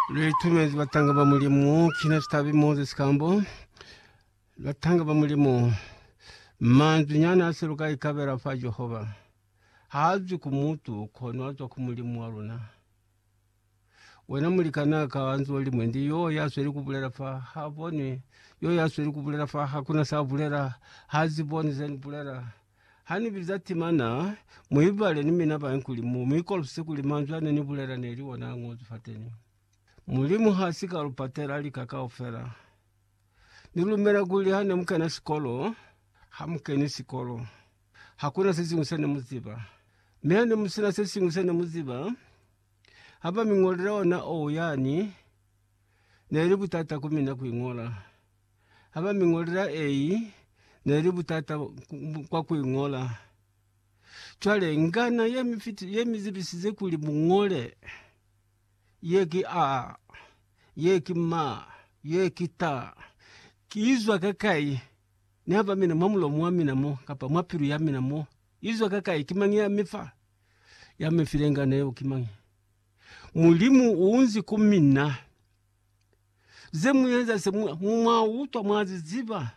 Litumezi batanga ba Mulimu kina citabi Moses Kambo. Batanga ba Mulimu manzwi nyana ase luka ikabela fa Jehova. Haazwi ku mutu kono azwa ku Mulimu wa luna. Wena mulikana ka anzwa limwe ndi yo yasweli kubulela fa ha boni yo yasweli kubulela fa hakuna sa bulela hazi boni zeni bulela Ha ni biza timana, mu ibale ni mina bañkuli, mu mi kolopise kuli manzwi a ne ni bulela ne li ona a ñozwi fateni. Mulimu ha si ka lu patela lika kaufela. Ni lumela kuli ha ne mu kena sikolo, ha mu keni sikolo, hakuna se siñwi se ne mu ziba. Mi ha ne mu sina se siñwi se ne mu ziba, ha ba mi ñolele ona, oh, yani, ne li butata ku mina ku i ñola. Haba mi ngolela ei neli butata kwa ku ingola. Cwale ngana ye mi fiti ye mi zibisize kuli mu ngole, Ye ki A, ye ki Ma, ye ki Ta. Ki izwa ka kai? Ni haba mina mwa mulomo wa mina mo, kapa mwa pilu ya mina mo. Izwa ka kai? Ki mañi ya mi fa? Ya mi file ngana yeo ki mañi? Mulimu u unzi ku mina. ze mu eza se mu, mu mwa utwa mwa zi ziba.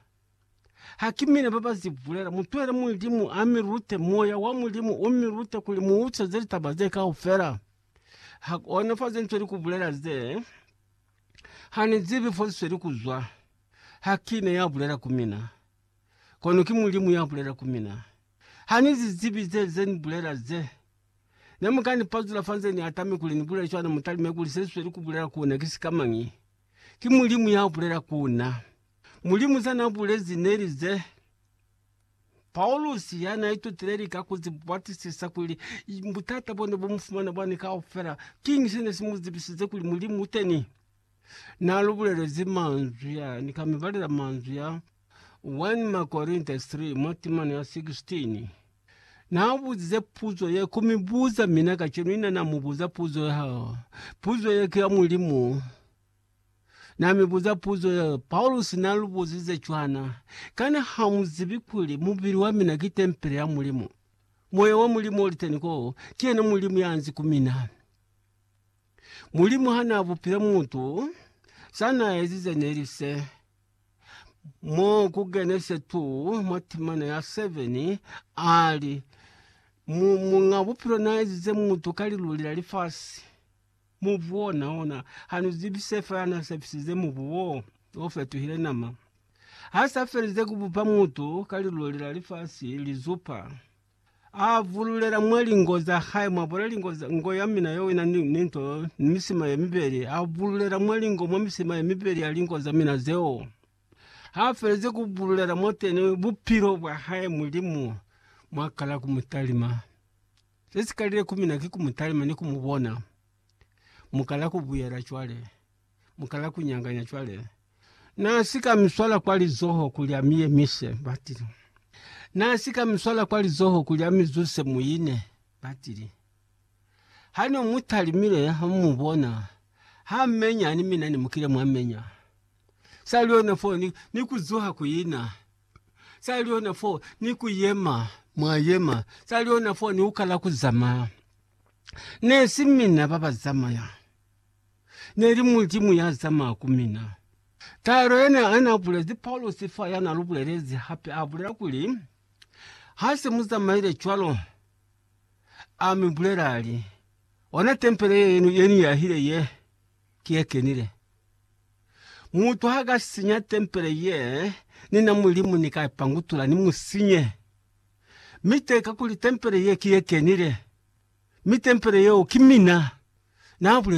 Ha ki mina ba ba zi bulela. Mu twele Mulimu a mi lute, Moya wa Mulimu u mi lute kuli mu utweze litaba ze kaufela. Ha kona fa ze ntweli ku bulela ze, Ha ni zibi fo zisweli ku zwa. Ha ki ne ya bulela ku mina. Kono ki Mulimu ya bulela ku mina. Ha ni zi zibi ze, ze ni bulela ze. Ne mu ka ni pazula fa nze ni atami kuli ni bulele cwana, mu talime kuli se sweli ku bulela ku na ki sika mañi? Ki Mulimu ya bulela ku na. Mulimu za na bulezi ne li ze. Paulusi ya na itutile lika ku ziba batisisa kuli butata bo ne bu mu fumana bwani kaufela, kiñi se ne si mu zibisize kuli Mulimu u teni? Na lu bulelezi manzwi a ni ka mi balela manzwi a 1 Makorinta 3 mwa timana ya 16 Naabuzize puzo ye ku mi buza, mina kacenu ina na mu buza puzo ya hao. Puzo ye ki ya Mulimu. Na mi buza puzo ye, Paulusi na lu buzize cwana, Kana ha mu zibi kuli mubili wa mina ki tempele ya Mulimu? Moya wa Mulimu oli teni ko, ki yena Mulimu ya nzi ku mina. Mulimu ha na bupile mutu, sa na ezize neli se. Mo ku Genese 2 mwa timana ya 7, a li, Mu, Muñ'a Bupilo n'a ezize mutu ka liluli la lifasi. Mubu wona, ona, ha nu zibi se fela n'a sepisize mubu wo, o fetuhile nama. Ha s'a felize ku bupa mutu ka liluli la lifasi, lizupa, A vululela mwa lingo za hae, mwa bona lingo za ngo ya mina yo ina ni, ni nto, ni misima ye mibeli. A vululela mwa lingo, mwa misima ye mibeli ya lingo za mina zeo. Ha feleze ku vululela mo teni bupilo bwa hae, Mulimu mwa kala ku mu talima. Se si kalile ku mina ki ku mu talima ni ku mu bona. Mu kala ku buyela cwale. mukala kunyanganya cwale. Naasika miswala kwa lizoho kuli amiyemise, batili. Naasika miswala kwa lizoho kuli amizuse muine, batili. Hane umutalimile hamumubona, hammenya ni mina nimukile mwamenya. Saliona fo ni, ni kuzuha kuina. Saliona fo ni kuyema, mwayema. Saliona fo ni ukala kuzamaya. Nesi mina babazamaya. Neli Mulimu ya zamaya ku mina. Taelo yene ana bulezi Paulusi fa yana lu bulelezi hape a bulela kuli, Ha se mu zamaile cwalo, a mi bulela a li, Ona tempele ye ye ni yahile ye, ki ye kenile. Mutu ha ka sinya tempele ye ni na Mulimu ni ka ipangutula ni mu sinye. Mi te kakuli tempele ye ki ye kenile, mi tempele yeo ki mina, na bulezi.